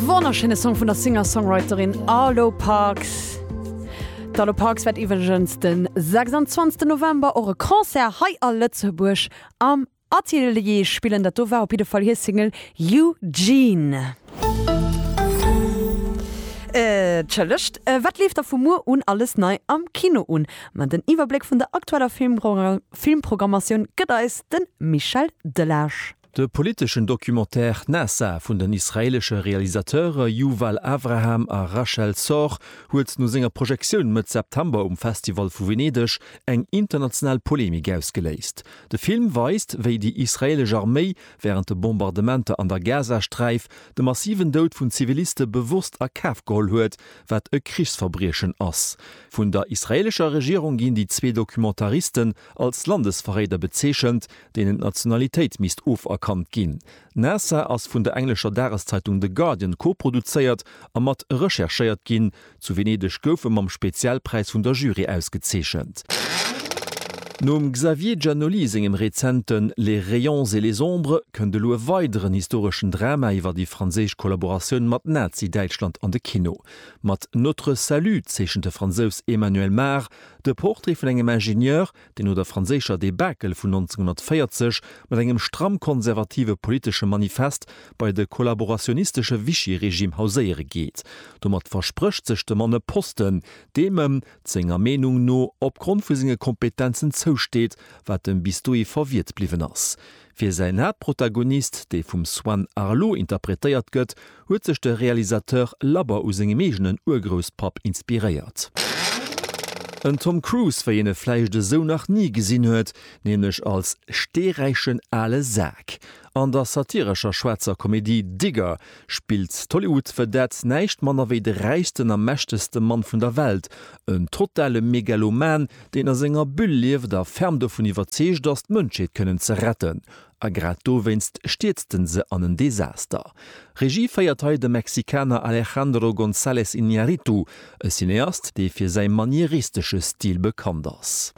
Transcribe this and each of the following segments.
Wonnerschéine Song vun der Singer-Songwriterin Arlo Parks. D'Arlo Parks wäert iwwregens de 26 November och e Concert hei a Lëtzebuerg am Atelier spillen. Dat do war op jidde Fall hir Single Eugene. Entschëllegt, wat leeft da vu muer un alles nei am Kino un? Ma den Iwwerbléck vun der aktueller Filmprogrammatioun gëtt eis de Michel Delage. De politeschen Documentaire Nasa vun den israeelesche Realisateure Yuval Avraham a Rachel Sorr huet no senger Projektioun Mëtt September um Festival vu Venedeg eng international Polemik ausgeléist. De Film weist, wéi déi israeelesch Arméi wärend de Bombardementer an der Gazasträif de massiven Doud vun Ziviliste bewosst a Kaf geholl huet, wat e Krichsverbriechen ass. Vun der israeelescher Regierung ginn déi zwee Documentaristen als Landesverréider bezeechent, deenen d'Nationalitéit misst oferkannt ginn. Nasa ass vun der englescher Dageszeitung The Guardian koproduzéiert a mat recherchéiert ginn. Zu Venedeg gouf e mam Spezialpräis vun der Jury ausgezeechent. Nom Xavier Giannoli sengem rezenten Les rayons et les ombres kënnt elo e weideren historeschen Drama iwwer déi franséisch Kollaboratioun mat Nazi-Däitschland an de Kino. Mat Notre salut zeechent de Fransous Emmanuel Mar de Portrait vun engem Ingenieur, déi no der franséischer Debakel vun 1940 mat engem stramm konservative politesche Manifest bei de kollaborationistesche Vichy-Regime hauséiere geet. Domat versprécht sech de Mann e Posten, deem em, senger Meenung no, opgrond vu senge Kompetenzen zousteet, wat em bis dohi verwiert bliwwen ass. Fir säin Haaptprotagonist, dee vum Swan Arlo interpretéiert gëtt, huet sech de Realisateur labber u sengem eegenen Urgrousspapp inspiréiert. En Tom Cruise, wéi een e vläicht esou nach ni gesinn huet, nämlech als steeräichen ale Sak. An der satirescher schwaarzer Komedie Digger spillt d'Hollywood Vedette näischt manner wéi de räichsten a mächtegste Mann vun der Welt, en totale Megaloman, deen a senger Bulle lieft a ferm dovun iwwerzeegt ass, d'Mënschheet kënnen ze retten. A grad dowéinst stierzt en se an en Desaster. Regie féiert hei de Mexikaner Alejandro González Iñárritu, e Cineast, dee fir säi manieristesche Stil bekannt ass.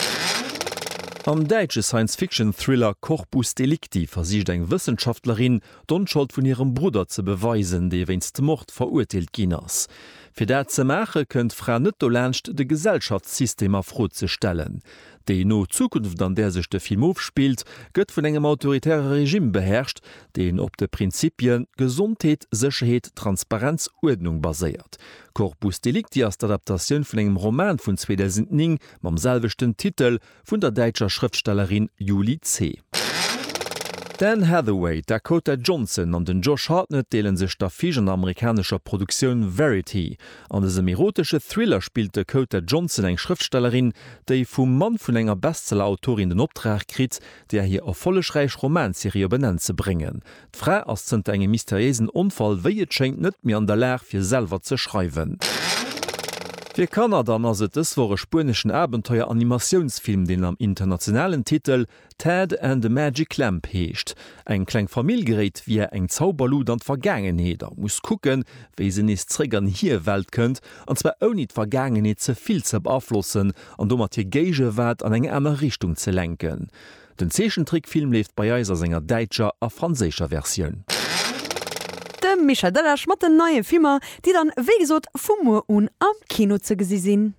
Am däitsche Science-Fiction-Thriller Corpus Delicti versicht eng Wëssenschaftlerin, d'Onschold vun hirem Brudder ze beweisen, dee wéinst Mord verurteelt ginn ass. Fir dat ze maache kënnt d'Fra net dolaanscht, de Gesellschaftssystem a Fro ze stellen. Déi no Zukunft, an där sech de Film ofspillt, gëtt vun engem autoritäre Regime beherrscht, deen op de Prinzipie Gesondheet, Sécherheet, Transparenz, Uerdnung baséiert. Corpus Delicti ass d'Adaptatioun vun engem Roman vun 2009 mam selwechten Titel, Vun der däitscher Schrëftstellerin Julie C. D'Anne Hathaway, d'Dakota Johnson an den Josh Hartnett deele sech d'Affiche an der amerikanescher Produktioun Verity. An dësem erotesche Thriller spillt d'Dakota Johnson eng Schrëftstellerin, déi vum Mann vun enger Bestseller-Autorin den Optrag kritt, där hir erfollegräich Romanserie op en Enn ze bréngen. D'Fra ass zënter engem mysteriéisen Onfall, wéi et schéngt, net méi an der Lag, fir selwer ze schreiwen. Fir Kanner dann ass et dës Woch e spueneschen Abenteuer-Animatiounsfilm, deen am internationalen Titel Ted and the Magic Lamp heescht. Eng kleng Famill geréit via eng Zauberlut an d'Vergaangenheet a muss kucken, wéi se nees zeréck an hir Welt kënnt, an zwar ouni d'Vergaangenheet ze vill ze beaflossen an domat hir Géigewaart an eng aner Richtung ze lenken. Den Zeechentrickfilm leeft bei eis a senger däitscher a franséischer Versioun. De Michel Delage mat den neie Filmer, déi dann, wéi gesot, vu muer un am Kino ze gesi sinn.